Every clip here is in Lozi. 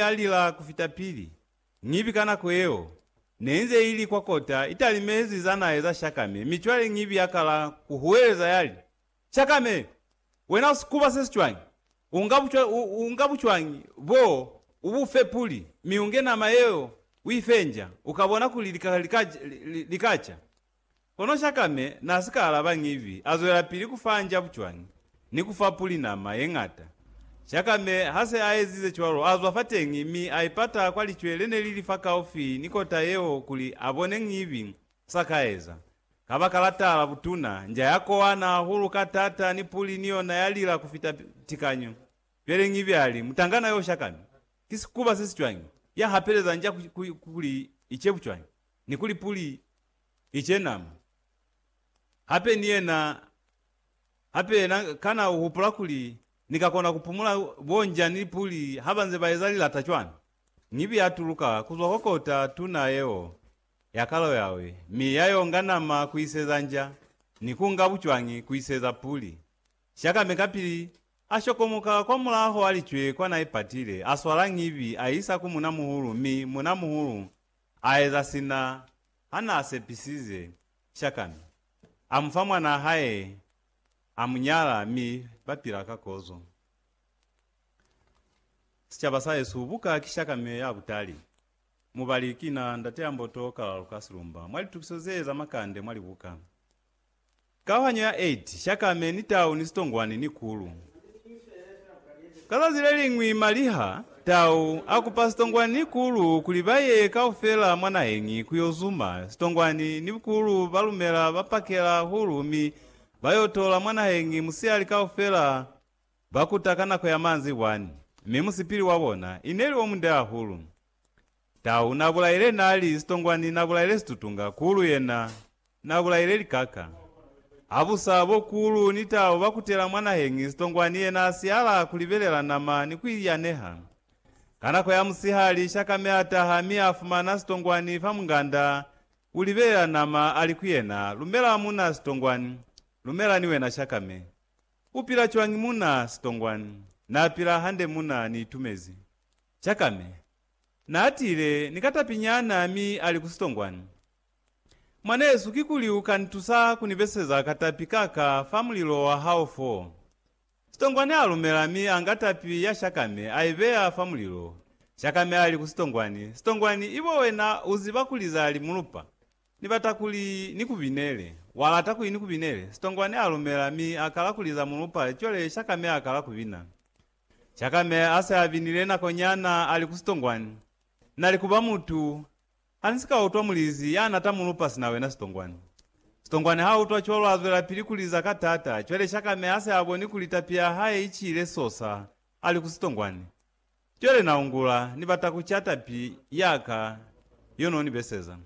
ya lila ku fita pili, Ngibi ka nako yeo ne inze ili kwa kota italimezi za nae za Shakame, mi cwale Ngibi ya kala ku huweleza ya li, Shakame! Wena u sikuba se si cwañi? U nga bu, u, u nga bu cwañi bo, u bu fe puli, mi u nge nama yeo u i fenja, u ka bona kuli li ka, li ka, li, li ka ca. Kono Shakame n'a si ka alaba ñibi, a zwelapili ku fa nja bucwani ni ku fa puli nama ye ñata. Shakame ha se a ezize cwalo, a zwa fateñi mi a ipata kwa licwe le ne li li fakaufi ni kota yeo kuli a bone ñibi s'a ka eza. Kabakala tala butuna, nja ya kowana hahulu ka t'ata ni puli ni yona ya lila ku fita tikanyo. Cwale ñibi a li, Mutangana yo Shakame, ki sikuba se si cwañi, ya hapeleza nja kuli i ce bucwani? Ni kuli puli i cenama. Hape ni yena, hape yena kana u hupula kuli ni ka kona ku pumula bo njani puli ha ba nze ba eza lilata cwani? Ñibi ya tuluka ku zwa kwa kota tuna yeo ya kalo yawe, mi ya yo nga nama ku iseza nja, ni ku nga bucwangi ku iseza puli. Shakame kapili, a shokomoka kwa mulaho a licwe kwa na ipatile, a swala ñibi a isa ku munamuhulu, mi munamuhulu A eza sina ha n'a sepisize Shakami. A mu fa mwan'a hae, a mu nyala, mi ba pila ka kozo. Sicaba sa hesu buka ki Shakami ya butali. Mubali kina Ndateamboto Kalalukasilumba mwa litukiso zee za makande mwa libuka. Kauhanyo ya 8, Shakame ni tau ni sitongwani ni kulu. Ka zazi leliñwi maliha, tau, a kupa sitongwani ni kulu kuli ba ye kaufela mwa naheñi ku yo zuma. Sitongwani ni kulu ba lumela ba pakela hulu mi ba yo tola mwa naheñi musihali kaufela ba kuta ka nako ya manzibwani, mi musipili wa bona ineli o munde hahulu. Tau na bulaile nali sitongwani na bulaile situtunga kulu yena na bulaile likaka. Habusa bo kulu ni tau ba kutela mwa nahengi sitongwani yena a siala ku libelela nama ni ku iyaneha. Ka nako ya musihali shakame a taha mi a fumana sitongwani fa munganda u libelela nama a li ku yena lumela muna sitongwani lumela ni wena shakame. U pila cwañi muna sitongwani? Na pila hande muna ni itumezi. Chakame naatile ni ka tapi nyana mi ali ku sitongwani, Mwanesu, kikuli u ka nitusa ku ni beseza ka tapi ka ka fa mulilo wa hao fo? Sitongwani a lumela mi a nga tapi ya Chakame a i beya fa mulilo. Chakame ali ku sitongwani, Sitongwani, ibo wena u ziba kuli za li mulupa. Ni bata kuli ni ku binele. Wa lata kuli ni ku binele? Sitongwani a lumela mi a kala kuli za mulupa, cwale Chakame a kala ku bina. Jakame ase abinile nako nyana ali ku sitongwani, nali kuba mutu hani sika utwa mulizi yana tamulupa sina wena sitongwani. Sitongwani ha utwa cwalo azwelapili kuliza ka tata, cwale Jakame ase aboni kuli tapi ya hae icile sosa ali ku sitongwani. Cwale naungula, nibata kuca tapi yaka yo nonibeseza.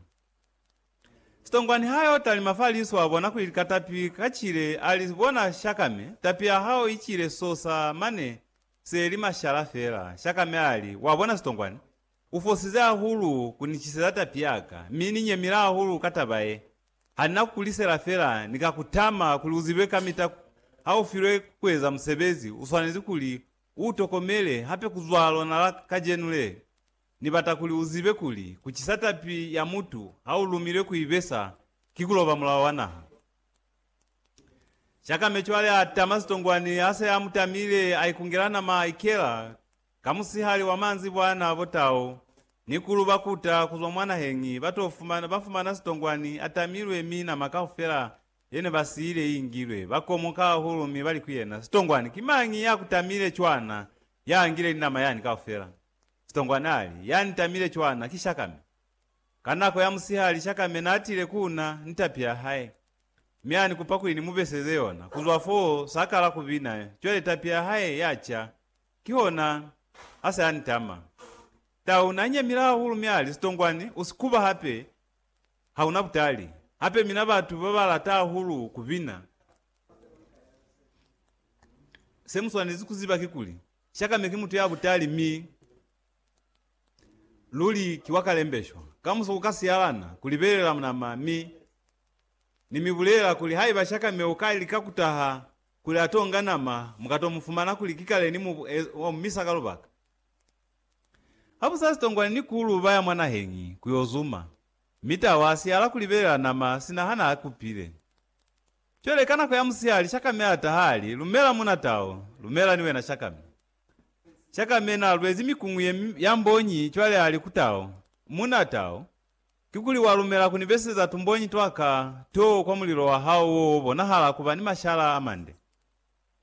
Sitongwa niha yo talima fa liso a bona kuli lika tapi ka cile a li, Bona Shakame, tapi ya hao i cile sosa mane se li mashala fela. Shakame a li, Wa bona Sitongwa ni? U fosize hahulu ku ni ciseza tapi ya ka, mi ni nyemile hahulu ka taba ye. Ha ni na ku ku lisela fela, ni ka ku tama kuli u zibe kamita ku ha u filwe ku eza musebezi, u swanezi kuli u u tokomele hape ku zwa lona la kajenu le. Ni bata kuli u zibe kuli ku cisa tapi ya mutu ha u lumilwe ku i besa ki ku loba mulao wa naha. Shakame cwale a tama sitongwani ha se a mu tamile, a ikungela nama a ikela ka musihali wa manzi bwana bo tau ni kulu ba kuta ku zwa mwa naheñi ba to fumana, ba fumana sitongwani a tamilwe mi nama kaufela ye ne ba siile i ingilwe. Ba komoka hahulu mi ba li ku yena, Sitongwani, ki mañi ya ku tamile cwana ya ngile ni nama yani kaufela? Sitongwa nali ya ntamile cwana ki Shakame. Ka nako ya musihali Shakame natile ku na ni tapi ya hae, mi ani kupa kuli ni mubeseze yona. Kuzwa foo sa kala kubina, cwale tapi ya hae ya ca, kihona ase a nitama. Tau na nyemile hahulu mi ali, Sitongwani, u si kuba hape, ha una butali. Hape mina batu ba ba lata hahulu kubina. Se mu swanezi kuziba kikuli, Shakame ki mutu ya butali mi luli ki wa kalembeshwa. Kamuso ku ka siyalana ku libelela munama mi Ni mi bulela kuli haiba Shakame u ka lika ku taha kuli a t'o nga nama, mu ka t'o mu fumana kuli ki kale ni mu omisa ka lubaka. Ha bu sa sitongwani ni kulu ba ya mwa naheñi ku yo zuma, mi tau a siyala ku libelela nama sina hana a kupile. Cwale ka nako ya musihali Shakame a taha a li, Lumela, muna Tao. Lumela ni wena, Shakame. Shakame na lwezi mikuñu ye ya mbonyi cwale a li ku Tao, Muna Tao, kikuli wa lumela ku ni beseza tumbonyi twa ka to kwa mulilo wa hao wo wo bonahala ku ba ni mashala a mande?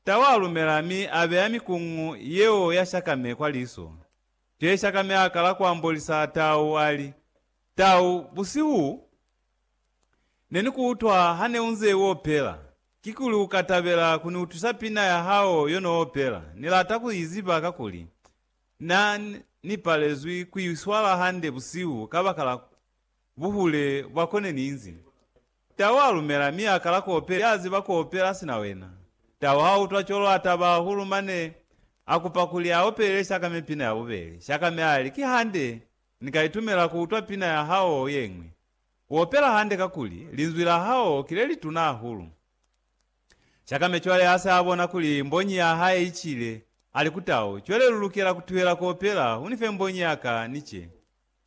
Tao a lumela mi a beya mikuñu yeo ya Shakame kwa liso. Cwale Shakame a kala ku ambolisa Tao, a li, Tao, busihu u. Ne ni ku utwa ha ne u nze u opela. Kikuli u ka tabela ku ni utwisa pina ya hao yo no opela? Ni lata ku i ziba kakuli na ni palezwi ku i swala hande busihu kabakala buhule bwa ko ne ni nzi. Tau a lumela mi a kala ku opela. Ya ziba ku opela sina wena. Tau ha utwa cwalo a taba hahulu mane a kupa kuli a opelele Shakame pina ya bubeli. Shakame a li, Ki hande, ni ka itumela ku utwa pina ya hao ye ñwi. U opela hande kakuli linzwi la hao ki le lituna hahulu. Shakame cwale ha se a bona kuli mbonyi ya hae i cile, a li ku Tao, Cwale lu lukela ku tuhela ku opela, u ni fe mbonyi ya ka, ni ce.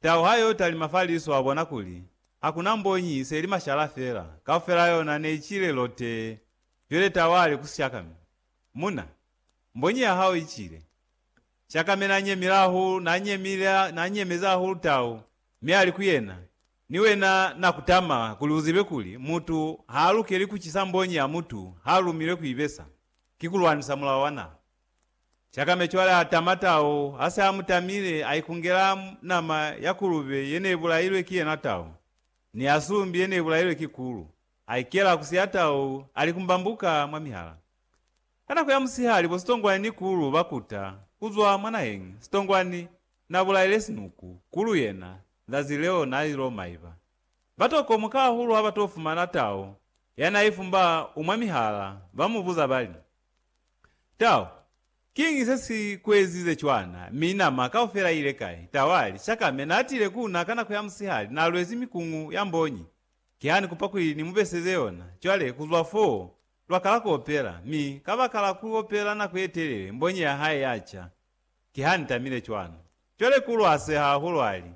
Tao ha y'o talima fa liso a bona kuli ha ku na mbonyi, i se li mashala fela, kaufela yona ne i cile lotee. Cwale Tao a li ku Shakame, Muna, mbonyi ya hao i cile. Shakame n'a nyemile hahulu, n'a nyemile, n'a nyemezi hahulu Tao. Mi ali ku yena, Ni wena na kutama kuli uzibe kuli mutu ha alukeli kucisa mbonyi ya mutu ha lumilwe ku ibesa, ki kulwanisa mulao wa naha. Shakame cwale atama tau, ha se amutamile, aikungela nama ya kulube ye ne bulailwe ki yena tau, ni ya sumbi ye ne bulailwe ki kulu, aikela kusi ya tau, alikumbambuka mwa mihala. Ka nako ya musihali bo Sitongwani ni Kulu ba kuta ku zwa mwa naheñi. Sitongwani na bulaile sinuku. Kulu yena, zazi leo na ilo maiba. Ba to komoka hahulu ha ba to fumana tau ya na ifumba u mwa mihala, ba mu buza ba li, Tau, kiñi se si ku ezize cwana, mi nama kaufela i ile kai? Tau a li, Shakame na tile ku na ka nako ya musihali, na lwezi mikuñu ya mbonyi. Kihani kupa kuli ni mu beseze yona. Cwale, ku zwa foo, Lwa kala ku opela, mi kabakala ku opela nako ye telele, mbonyi ya hae ya ca. Ki ha ni tamile cwalo. Cwale ku lwase hahulu a li,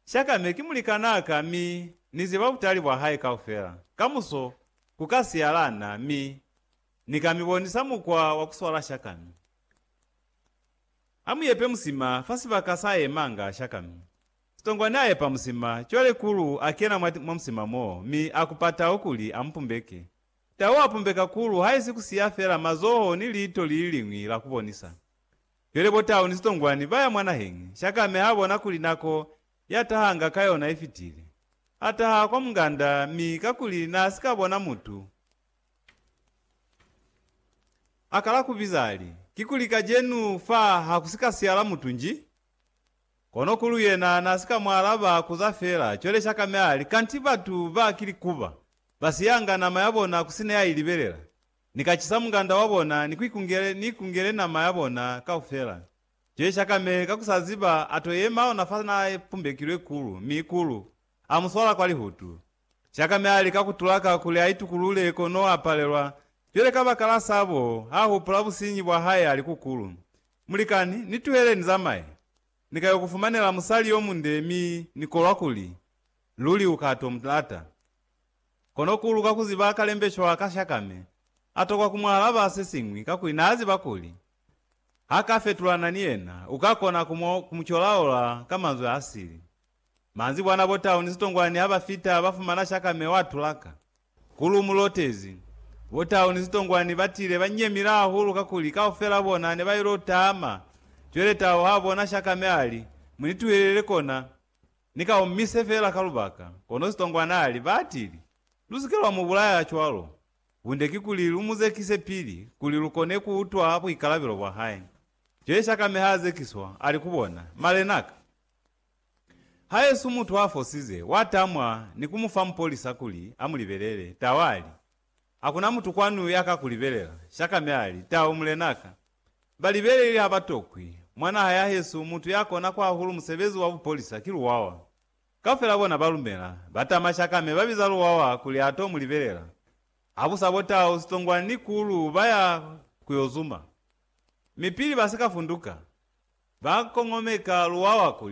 Shaka, me ki mulikanaa ka, mi Ni ziba butali bwa hae kaufela. Kamuso, ku ka siyala na, mi Ni ka mi bonisa mukwa wa ku swala shakami. A mu yepe musima fa sibaka sa yemanga shakami. Sitongwani a epa musima, cwale Kulu a kena mwa, mwa musima moo, mi a kupa tau kuli a mu pumbeke. Tau a pumbe kakulu haisi ku siya fela mazoho ni liito li li liñwi la ku bonisa. Jwale bo tau ni sitongwani ba ya mwa naheñi, Shakame ha bona kuli nako ya tahanga ka yona i fitile. A taha kwa munganda mi kakuli n'a si ka bona mutu, a kala ku biza a li, Kikuli kajenu fa ha ku si ka siyala mutu nji? Kono kulu yena na si ka mu alaba, ku za fela cwale shaka mi a li, Kanti batu ba ki likuba, ba siyanga nama ya bona ku sina ya i libelela. Ni ka cisa munganda wa bona ni ku ikungele, ni ikungele nama ya bona kaufela. Cwale shaka mi ka ku sa ziba, a to yema ona fa na pumbekilwe kulu, mi kulu a mu swala kwa lihutu. Jakame a lika ku tulaka kuli a itukulule kono a palelwa. Cwale kabakala sa bo, ha hupula businyi bwa hae a li ku Kulu, Mulikani, ni tuhele ni zamaye. Ni ka yo ku fumanela musali yo munde mi ni kolwa kuli luli u ka to mu lata. Kono Kulu ka ku ziba kalembecwa ka Shakame, a tokwa ku mu alaba se siñwi kakuli naa ziba kuli ha ka fetulana ni yena, u ka kona ku mu colaola ka manzwi a sili. Manzibwana bo Town Sitongwani ha ba fita ba fumana shakame wa tulaka. Ku lu mu lotezi. Bo Town Sitongwani ba tile ba nyemile hahulu kakuli kaufela bona ne ba ilo tama. Cwele Tau ha bona shakame a li, Mu ni tuhelele kona, ni ka omise fela ka lubaka. Kono Sitongwani a li, Ba atili, Lu si ke lwa mu bulaya cwalo. Bunde ki kuli lu mu zekise pili kuli lu kone ku utwa buikalabelo bwa hae. Cwele shakame ha zekiswa, a li ku bona, Malenaka, Haesu mutu a fosize, wa tamwa ni ku mu fa mupolisa kuli a mu libelele. Tau a li, Hakuna mutu kwanu ya ka ku libelela. Shakame a li, Tau, mulena ka. Ba libeleli ha ba tokwi. Mwa naha ya hesu, mutu ya kona kwa hahulu musebezi wa bupolisa ki luwawa. Kaufela bona ba lumela. Ba tama Shakame, ba biza luwawa kuli a to mu libelela. Ha bu sa bo Tau, Sitongwana ni Kulu ba ya ku yo zuma. Mi pili ba si ka funduka, ba kongomeka luwawa kuli.